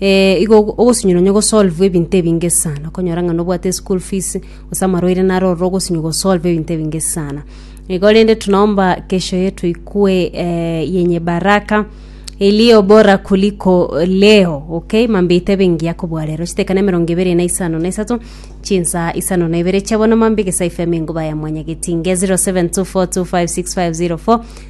Ee, igo ogo- ogosinywa nonya gosolvwa ebinto ebinge sana, okonyora ng'a nobwate eschool fees, gose amarwaire naro ororo ogosinywa gosolve ebinto ebinge sana. Igo rende tunaomba kesho yetu ikwe eh, yenye baraka iliyo bora kuliko leo okay mambite bengiya kobua rero chitekana emerongo ebere na isano na isato chinsa isano na ibere chia bono mambige saife amengo baya mwanyagetinge 0724256504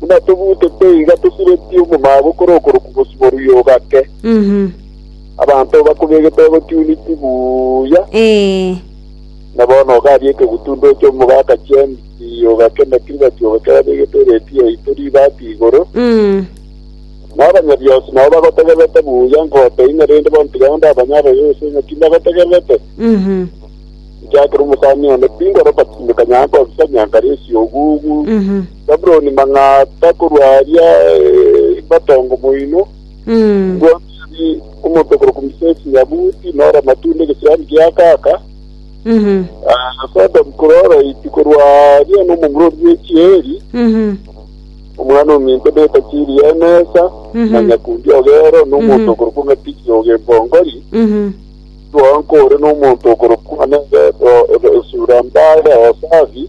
Buna tobutete iga tosiretie omomaboko kore okoroku bosio oruya ogake. Mhm. Abanto obakobegete bagotiuniti buya, Ee. na bono ogabia ekegutundo oche omogaka chiambi ogake na kiribati ogake babegete ereti yaito ribati igoro. Mm. Na abanyabionsi nao bagotegererete buya ngote ime rende bono tiga onde amanye abaye gose ng'a timbagotegererete. Mhm. Inche akere omosani one, tingoroka tindikanyara kobisa nyanka resi ogugu. Mhm. Babuloni mang'ata korwa aaria matongo moino, ngwa Meli omonto okorokwa Misesi Nyabuti, na Oramatunda egesiani kia Akaka, na Sodomu korwa Oroiti, korwa aaria nomomura o Riechieli, omwana ominto beta Chiri Enesa, na nyakundi o Gero, na omonto okorokwa ng'a Tiri o Gempongori, Suham kore nomonto okorokwa ng'a Nebeto, Suram bare Hosafi,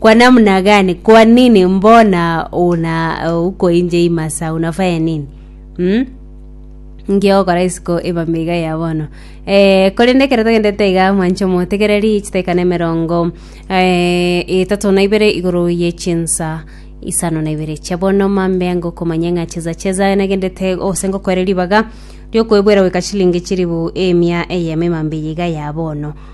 Kwa namna gani? Kwa nini mbona una uh, uko inje imasa unafanya nini mm? ngiokora isiko ebambe iga ya bono eh, korende ekero togendete iga mwancho motegereri chitaikana emerongo eh, etatu na ibere igoro ye chinsa isano na ibere chia bono mambe ango komanya ng'a cheza cheza nagendete ose ngokwere ribaga riokwebwera goika chilingi chiribu emia eyemo emambe iga ya bono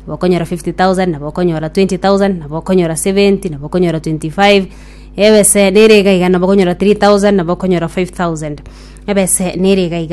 nabo okonyora fifty thousand, nabo okonyora twenty thousand, nabo okonyora seventy, nabo okonyora twenty five, ebese nere iga iga, nabo okonyora three thousand, nabo okonyora five thousand, ebese nere iga iga.